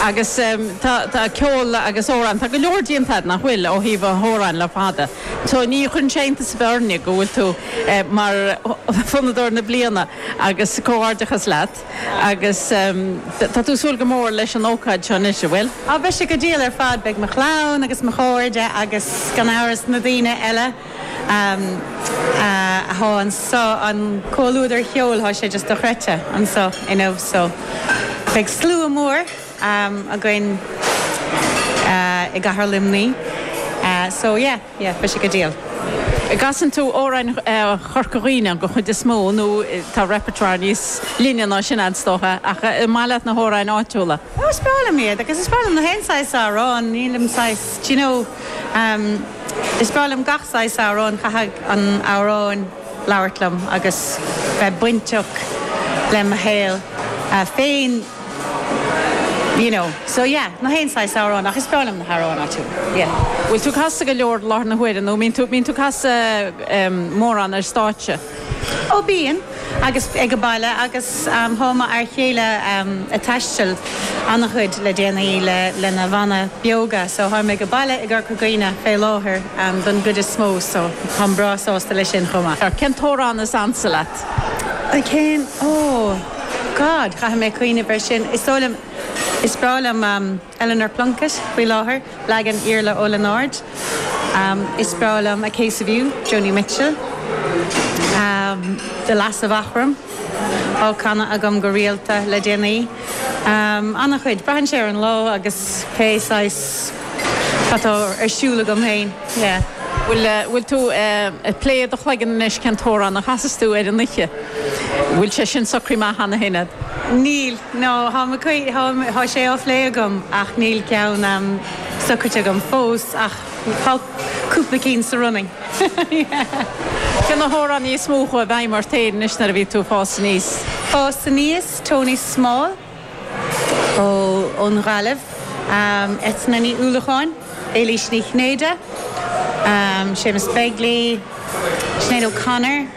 Agus tá ceol agus amhráin, tá go leor déanta agat, nach bhfuil, ó thaobh amhráin le fada. So ní chuireann sé iontas ar bith orainne go bhfuil tú mar Fonnadóir na Bliana agus comhghairdeachas leat agus tá tú ag súil go mór leis an ócáid seo anois, an bhfuil? Á, beidh sé go diail ar fad, beidh mo chlann agus mo chairde agus gan amhras na daoine eile. Tá an comhluadar ceoil tá sé just dochreidte anso inniu so beidh slua mór againn i gcathair Luimní so yeah yeah beidh sé go diail. An gcasann tú amhráin Chorca Dhuibhne den chuid is mó nó tá repertoire níos leithne ná sin a'd is dócha ach an maith leat na hamhráin áitiúla? Is breá liom iad agus is breá liom na haon saghas amhrán nílim saghas d'you know, Am, Is breá liom gach saghas amhráin, chaithfeadh an amhráin labhairt liom agus bheith bainteach le mo shaol féin you know, so yeah, na haon saghas amhráin ach is breá liom na hamhráin áitiúla, yeah. Bhfuil tú ag casadh go leor i láthair na huaire nó mbíonn tú ag casadh mórán ar stáitse? Ó bíonn agus ag baile agus tá m'fhear céile ag taisteal an-chuid le déanaí le lena bhanna Beoga so táim ag baile i gCorca Dhuibhne fé láthair don gcuid is mó so táim breá sásta le sin chomh maith. Cén t-amhrán is ansa leat? Cén oh God caithfidh mé cuimhneamh ar sin is dóigh liom is breá liom. Eleanor Plunkett faoi láthair, leagan Iarla Ó Lionáird, Is breá liom A Case of You, Joni Mitchell, The Lass of Aughrim á canadh agam go rialta le déanaí. Ana-chuid. Braitheann sé ar an lá agus pé saghas cad atá ar siúl agam féin, yeah. Bhfuil tú ag plé do chloigeann anois cén t-amhrán a chasas tú ar an oíche? Bhfuil sé sin socraithe amach cheana féin agat? Níl. No, tháim ag cuimhn, thá, thá sé á phlé agam ach níl ceann ehm socraite agam fós ach thá cúpla cinn sa running. Yeah. Cé na hamhránaithe is mó a chuaigh i bhfeidhm ort féin anois nuair a bhí tú ag fás aníos? Fás aníos, Tony Small ó, ón nGaillimh, ehm Eithne Ní Uallacháin, Éilís Ní Chinnéide, ehm Séamus Begley, Sinéad O'Connor.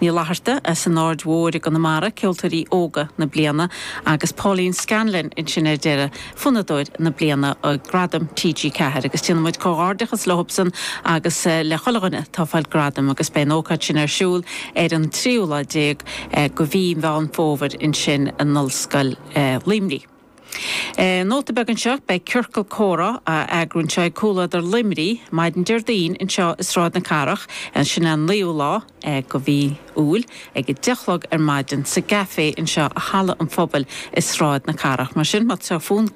Ní Fhlatharta as an Aird Mhóir i gConamara, Ceoltóirí Óga na Bliana, agus Pauline Scanlon ansin ar deireadh, Fonnadóir na Bliana i Gradaim TG4. Agus déanann muid comhghairdeachas leobsan agus le chuile dhuine atá ag fáil gradaim agus beidh an ócáid sin ar siúl ar an 13ú lá de mhí Mheán Fómhair ansin i nOllscoil Luimnigh. Nóta beag anseo, beidh Ciorcal Comhrá á eagrú anseo ag Comhluadar Luimnigh maidin Déardaoin anseo i Sráid na Cathrach, sin an 9ú lá de mhí Iúil, ag a deich a chlog ar maidin sa gCafé anseo i Halla an Phobail i Sráid na Cathrach. Mar sin, má tá fonn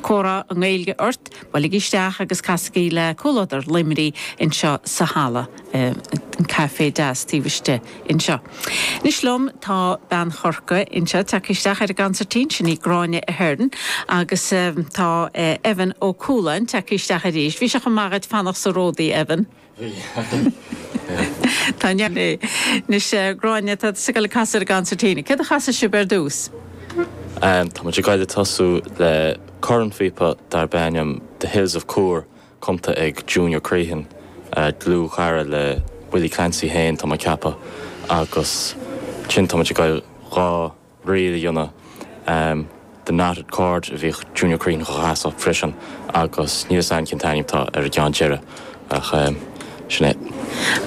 comhrá i nGaeilge ort, buailigí isteach agus casaigí le Comhluadar Luimnigh anseo sa Halla, an café deas taobh istigh. anseo. Anois liom tá bean Chorcaí anseo ag teacht isteach ar an gconsairtín, sin í Gráinne Ahern, agus tá Evan Ó Cualáin ag teacht isteach arís. Bhí sé chomh maith duit fanacht sa ródaí, Evan. Bhí. Tá an neart air. Anois Gráinne, tá tú ag gabháil ag casadh ar an gconsairtín. Céard a chasfaidh sibh ar dtús? Táimid ag gabháil ag tosú le cornphíopa darb ainm The Hills of Coore cumtha ag Junior Crehan, dlúthchara le Willie Clancy féin tá mé ag ceapadh agus ansin táimid ag gabháil dhá ríl a dhéanamh The Knotted Cord a bhíodh Junior Crehan dhá chasadh freisin agus níl a fhios agam cén t-ainm atá ar an gceann deiridh ach sin é.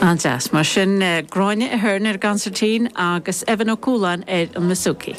An-deas. Mar sin Gráinne Ahern ar an gconsairtín agus Evan Ó Cualáin ar an mbouzouki.